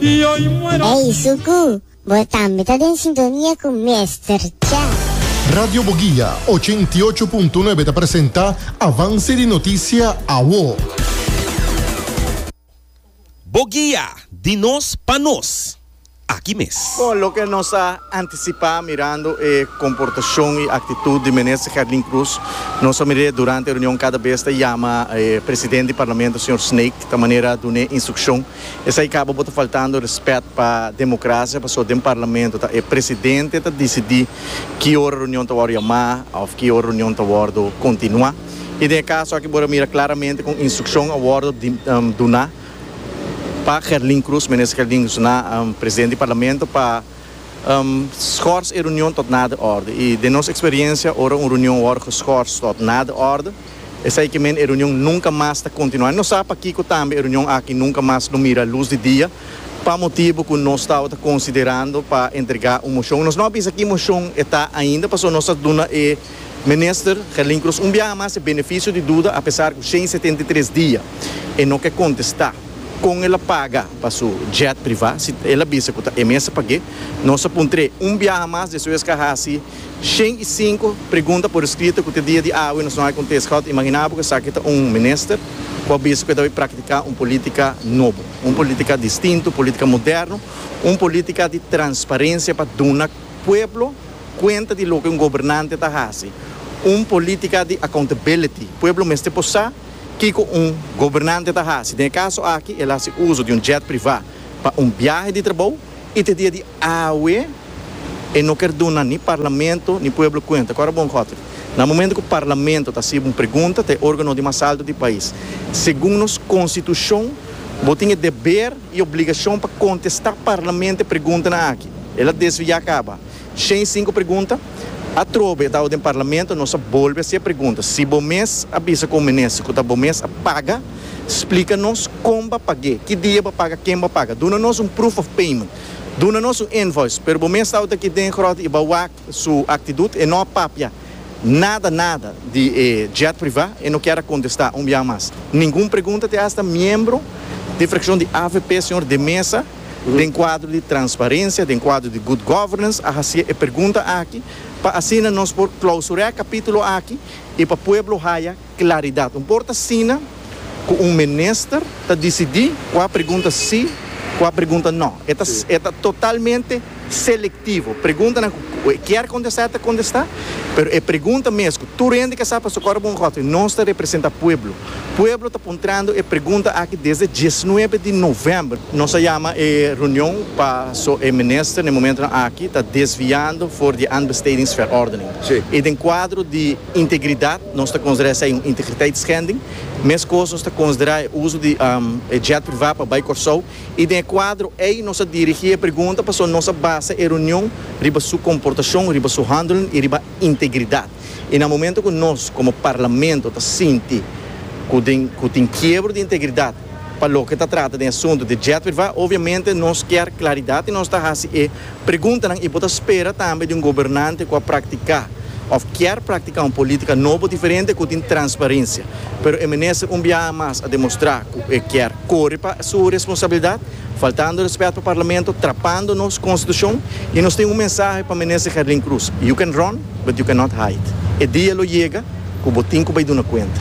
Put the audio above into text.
Ey Suku, bo tambe ta den sintonia cu Mester Cha. Radio Boguia ochenta i ocho punto nuebe ta presenta Avance di Noticia Awo. Boguia, di nos pa nos, aki mes. Bon, loke nos a anticipá mirando e comportacion y actitud di Minister Gerlin Cruz, nos a mir'é durante e reunion cada bes ta yama e President di Parlamento, Señor Snake, ta manera dun'é instruccion Esai kaba bo ta faltando respet pa demokrasia pasobra den parlamento ta e presidente ta disidí ki ora reunion ta wòrdu yamá òf ki ora reunion ta wòrdu kontinuá i den e kaso aki bo ta mira klaramente ku un instrukshon a wòrdu duná pa Gerlin Cruz, Minister Gerlin Cruz na presidente di parlamento pa skòrs e reunion tòt nada òrdu i den nos eksperiensia ora un reunion wòrdu geskòrs tòt nada òrdu. Esei ke men e reunion nunka mas ta kontinuá. Nos sa pakiko tambe e reunion aki nunka mas lo mira lus di dia, pa motibu ku nos tabata konsiderando pa entregá un moshon. Nos no a bisa ki moshon e ta ainda, pasobra nos a duna e Minister Gerlin Croes un biaha mas e benefisio di duda apesar ku shen setenta i tres dia e no ke kontestá kon el a paga pa su jet privá si el a bisa ku ta e mester pag'é. Nos a puntr'é un biaha mas despues k'e a hasi. Shen y sinku pregunta por escrito cu te dia di awe nos no hay contesta. Gauta imagina bo cu esaki ta un minister cu a bisa cu e ta bay practica un politica nobo, un politica distinto, politica moderno, un politica di transparencia pa duna pueblo cuenta di loke un gobernante ta haci, un politica di accountability. Pueblo mester por sa kico un gobernante ta haci. Den e caso aki el haci uzo di un jet priva pa un biahe di trabao. I te dia di awe e no ker duna ni parlamento ni pueblo kuenta. Ku ora bon gote. Na momento ku parlamento ta hasiba un pregunta ta e organo di mas alto di pais. Segun nos konstitushon bo tin e deber i obligashon pa kontestá parlamente preguntanan aki. El a desviá kaba. Shen sinku pregunta. Atrobe tau den parlamento nos a bolbe haci e pregunta. Si bo mes a bisa cu minister cu ta bo mes a paga, splica nos con ba page, ki dia ba paga, ken ba paga. Duna nos un proof of payment. Duna nos un invoice. Pero bo mes tau ta aki den grot y ba wak su actidut e no a papia. nada nada di e jet privá e no kier a kontestá un biaha mas ningun pregunta te asta miembro di frakshon di avp señor De Meza den kuadro di transparensia den kuadro di good governance a hasié e pregunta aki pa asina nos por klausur'é kapítulo aki i pa pueblo haya Claridad. Un por ta asina cu un minister ta dicidi cua pregunta si, cua pregunta no. E ta e ta totalmente selectivo. Preguntanan cu cu e kier contesta e ta contesta, pero e pregunta mes cu tur hende ke sa paso Coro Bongotwe nos ta representa pueblo. Pueblo ta puntrando e pregunta aki desde diesnuebe di november. Nos a yama e reunion paso e minister na e momentonan aki ta desviando for di e aanbestedingsverordening. Si. I den cuadro di. Integridad, nos ta considera esey un integriteitschending. Mescos nos ta considera e uso di e jet priva pa bay Corsou y den e cuadro ey nos a dirigi e pregunta pasobra nos a basa e reunion riba su comportacion, riba su handelen y riba integridad. Y na momento cu nos como Parlamento ta sinti cu den cu tin kiebro di integridad, Pa loke ta trata den asuntu di Jetwitva, obviamente nos kier claridad y nos ta haci e preguntanan y bo ta spera tambe di un gobernante cu a practica of kier practica un politica nobo diferente cu tin transparencia. Pero e minister un biaha mas a demostra cu e kier core pa su responsabilidad, faltando respet pa Parlamento, trapando nos Constitucion y nos tin un mensahe pa minister Gerlin Cruz, You can run, but you cannot hide. E dia lo yega cu bo tin cu bay duna cuenta.